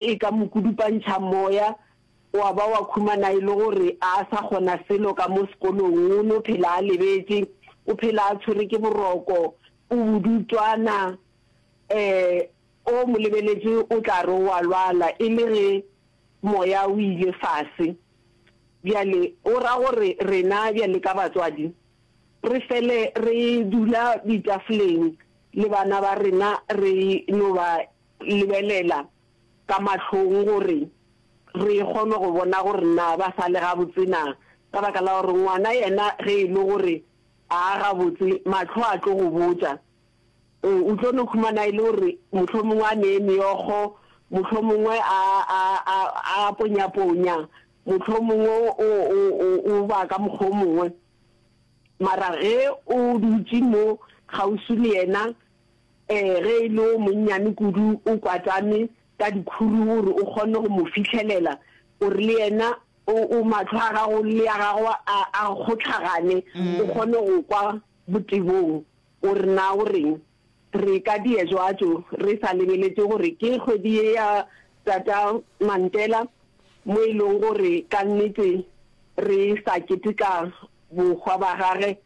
E ka mo kudupantšha moya, wa ba wa khumana e le gore a a sa kgona selo ka mo sekolong, o no phela a lebetše, o phela a tshwere ke boroko, o bodutšwana. Ee, o mo lebeletše o tla re o a lwala e le ge moya o ile fase. Bjale go ra gore rena bjale ka batswadi re fele re dula ditafoleng le bana ba rena re no ba lebelela ka mahlong gore re kgone go bona gore na ba sa le gabotse na, ka baka la gore ngwana yena ge e le gore ga a gabotse, mahlo a tlo go botša. O tlo no humana e le gore mohlomongwe a nee meokgo, mohlomongwe a, a, a, a ponyaponya, mohlomongwe o, o, o, o ba ka mokgwa o mongwe. Mara ge o dutše mo kgauswi le yena, Ee, ge e le o monnyane kudu o kwatame ka dikhuru o re o kgone go mo fihlelela, o re le yena o, o mahlo a gago le a gago a, a kgotlhagane, o kgone go kwa botebong. O re na o reng? Re ka diezwatšo re sa lebeletše gore ke kgwedi ye ya Tata Mantela mo e lego gore ka nnete re sa keteka bohwa ba gage,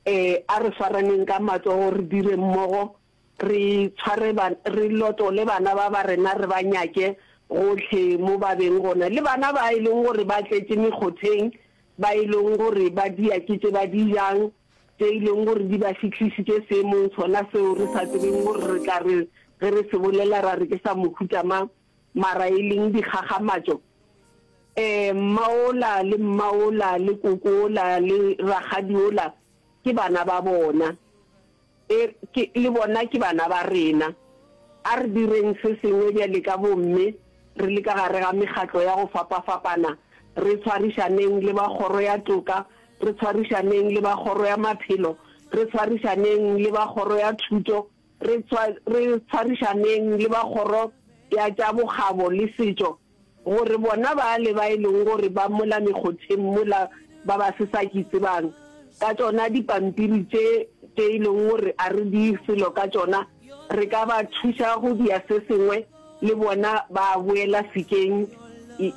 Ee, a re swaraneng ka matsogo, re dire mmogo, re tshware ba, re lotole bana ba ba rena, re ba nyake gohle mo ba beng gona, le bana ba e leng gore ba tletše mekgotheng, ba e leng gore ba dia ke tše ba di jang, tše e leng gore di ba fihlisitše seemong sona seo re sa tsebeng gore re tla re ge re se bolela ra re ke sa mohuta mang. Mara e leng dikgakgamatšo eh, mma ola le mma ola le koko ola le rakgadi ola ke bana ba bona e ke le bona ke bana ba rena. A re direng se sengwe bjale ka bomme re le ka gare ga mekgatlo ya go fapafapana, re tshwarišaneng le ba kgoro ya toka, re tshwarišaneng le ba kgoro ya maphelo, re tshwarišaneng le ba kgoro ya thuto, Re tshwa, re tshwarišaneng le ba Kgoro ya tša Bokgabo le Setšo, gore bona bale ba e lego gore ba mola mekgotheng mola ba ba se sa ke tsebang ka tšona dipampiri tše, tše e lego gore a re di selo ka tšona, re ka ba thuša go dia se sengwe le bona ba boela sekeng,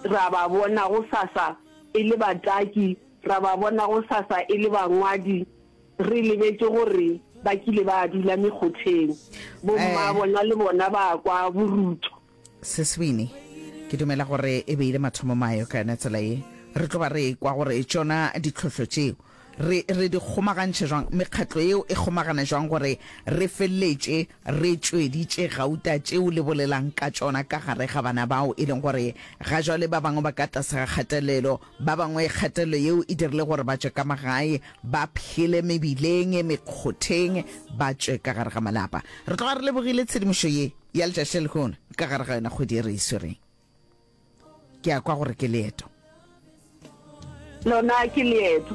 ra ba bona gosasa e le bataki, ra ba bona gosasa e le bangwadi. Re lebetše gore ba kile ba dula mekgotheng, bomma bona le bona ba kwa borutho. Seswini, Ke dumela gore e be e le mathomo mayo ka yona tsela ye. Re tlo ba re ekwa gore tšona ditlhohlo tšeo re re di kgomagantšhe jwang, mekgatlo yeo e kgomagana jwang gore re feleletše re tšweditše gauta tšeo le bolelang ka tšona ka gare ga bana bao e leng gore ga jwale ba bangwe ba ka tlase ga kgatelelo, Ba bangwe kgatelelo yeo e dirile gore ba tšwe ka magae, ba phele mebileng, mekgotheng, ba tšwe ka gare ga malapa. Re tloga re lebogile tshedimošo ye ya letšatši le lehono ka gare ga yona kgwedi e re e swereng. Ke a kwa gore ke leeto. Lona ke leeto.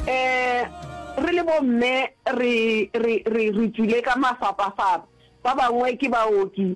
Um re le bomme re tswile ka mafapafapa, ba bangwe ke baoki,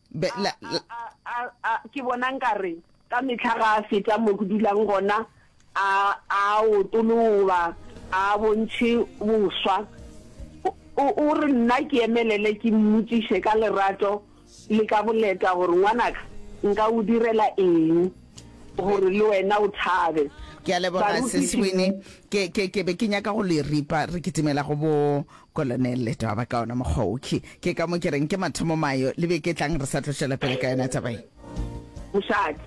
ke bona nkare ka metlha ga a feta mo ke dulang gona a otoloba a bontšhe boswa o re nna ke emelele ke mmotsiše ka lerato le ka boleta gore ngwanaka nka o direla eng gore le wena o thabe ke a leboga seswini ke be ke nyaka go le ripa re kitimela go bo Kolonel le toaba ka ona mokgwa wo. Ke, ke ka mo ke reng ke mathomo mayo. Le beke e tlang re sa tlo tšwela pele ka yona taba ye. Mosadi.